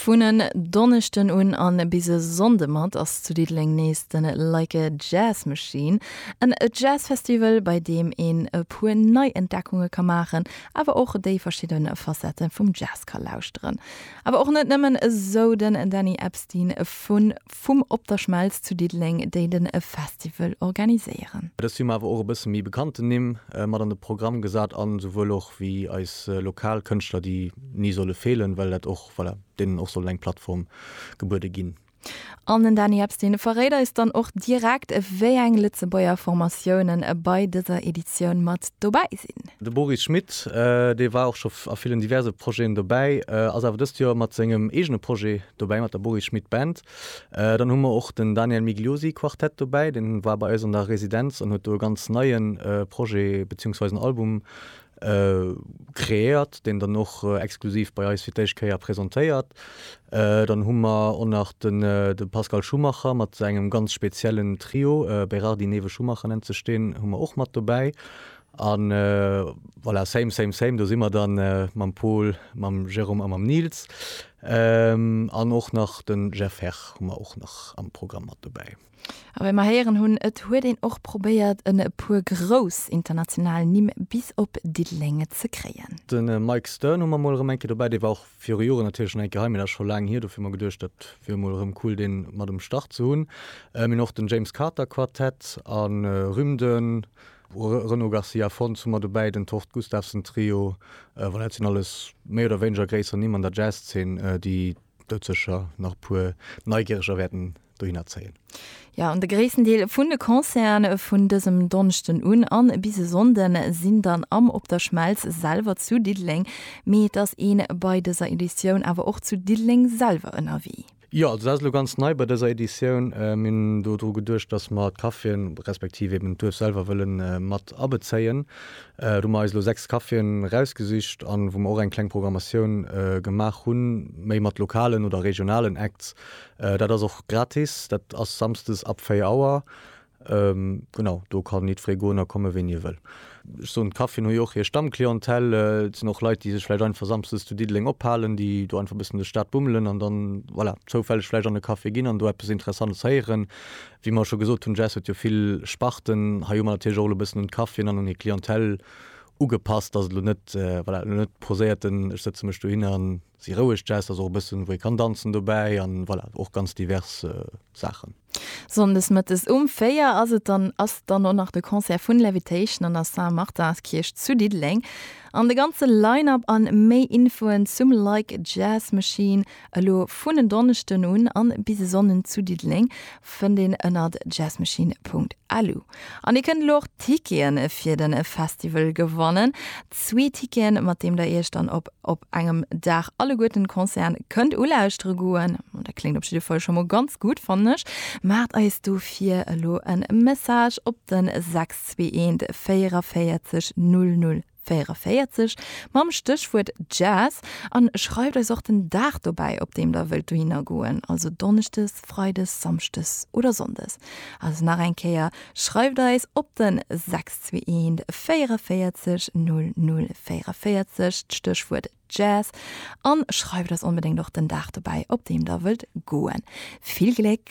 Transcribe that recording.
Vun en Donneschden un a bis e Sonnde mat ass zu Diddeleng nees de Like a Jazz Machine, en Jazzfestival, bei deem een e puer Neientdeckunge ka maachen, awer och déi verschidde Facette vum Jazz ka lauschteren. Awer och net nëmmen, esou den Danny Epstein vu vum Op der Schmelz zu Diddeleng, déi de Festival organiséieren. Et ass Summer awer och e bësse méi bekannten Nimm mat an de Programm gesat an esouwuel och wéi eis lokal Kënschtler, déi ni solle feelen, well dat och, voilà, deenen och soll eng Plattform gebuede ginn. An den Dany Epstein verréit eis dann och direkt, wéi eng Lëtzebuerger Formatiounen bei dëser Editioun mat dobäi sinn. De Boris Schmit, dee war och scho a villen diverse Projeten dobäi, ass awer dëst Joer mat sengem eegene Projet dobäi, mat der Boris Schmit Band. Dann hu mer och den Daniel Migliosi Quartett dobäi, deen war bei eis an der Residenz an huet do e ganz neie Projet, beziehungsweise en Album Kreéiert, deen dann och exklusiv bei eis fir d'éischt Kéier presentéiert. Dann hu mer och nach de Pascal Schumacher mat sengem ganz speziellen Trio, Berardi, Newe, Schumacher nennt sech deen, hu mer och mat dobäi. A voilà, same, same, same, do si mer dann mam Pol, mam Jérôme a mam Nils. An och nach de Jeff Herr hu mer och nach am Programm mat dobäi. A wéi mer héieren hunn, et huet een och probéiert en e puer grouss international Nimm bis op Diddeleng ze kréien. De Mike Stern hu mer mol erëm eng Kéier dobäi, dee war och viru Joren natierlech schonn eng Kéier hei, mee dat ass scho laang hier, dofir hu mer geduecht, dat wier mol erëm cool dee mat um Start ze hunn. Mir hunn och den James Carter Quartett a Rym, de Renaud Garcia Fons hu mer dobäi, den Tord Gustavsen Trio, voilà, dat sinn alles méi oder wéineger gréisser Nimm an der Jazz-Zeen, déi. Dot secher nach puer Neigereger wärten dohinner zéien. Jo, an de gréissten Deel vun de Concerten vun dësem Donschten un an bis e Sonnden sinn dann am Op der Schmelz selwer zu Diddeleng. Mee et ass een bei dëser Editioun awer och zu Diddeleng selwer ënnerwee. Jo, also dat ass elo ganz nei bei dëser Editioun. Mir hunn do dru geduecht, dass mer d'Caféen, respektiv eben d'Duerf selwer wëllen mat abezéien. do mer eis elo 6 Caféen erausgesicht an wou mer och eng kleng Programmatioun gemaach hunn, méi mat lokalen oder regionalen Acts. Dat ass och gratis, dat ass samsdes ab 4 Auer. Genau, do kann jiddweree goen a komme ween hie wëll. Ech soen, d'Caféen hu jo och hir Stammclientèle, et sinn och Leit, déi sech vläicht einfach samsdes zu Diddeleng ophalen, déi do einfach e bëssen duerch d'Stad bummelen an dann, voilà, zoufälleg vläicht an e Café ginn an do eppes Interessantes héieren. Wéi mer scho gesot hunn, Jazz huet jo vill Sparten. Hei hu mer natierlech och elo e bëssen un d'Caféen an un hir Clientèle ugepasst, dass et elo net, voilà, elo net poséierten, ech sëtze mech dohinner a si roueg Jazz, dass och e bëssen, wou ee kann danzen dobäi a voilà, och ganz divers Saachen. Sonndes mëttes um 4 ass et dann, ass dann och nach de Concert vun Levitation an der Saint-Martinskierch zu Diddeleng. An de ganze Line-Up an méi Infoen zum Like Jazz Machine Elo vun en Donneschden un an bis e Sonnden zu Diddeleng fënnt een ënnert jazzmachine.lu. An dir kënnt elo och Ticketen fir den Festival gewannen. Zwee Ticketen mat deem der iech dann op op engem Dag alleguerten Concerten kënnt ulauschtere goen, dat kléngt op jidde Fall scho mol ganz gutt fannen ech. Maacht eis dofir elo en Message op den 621 44 00 44 mam Stéchwuert Jazz an schreift eis och den Dag dobäi, op deem der wëllt dohinner goen, also Donneschdes, Freides, Samschdes oder Sonndes. Also nach eng Kéier, schreift eis op den 621 44 00 44, d'Stéchwuert Jazz an schreift eis onbedéngt och den Dag dobäi, op deem der wëllt goen. Vill Gléck!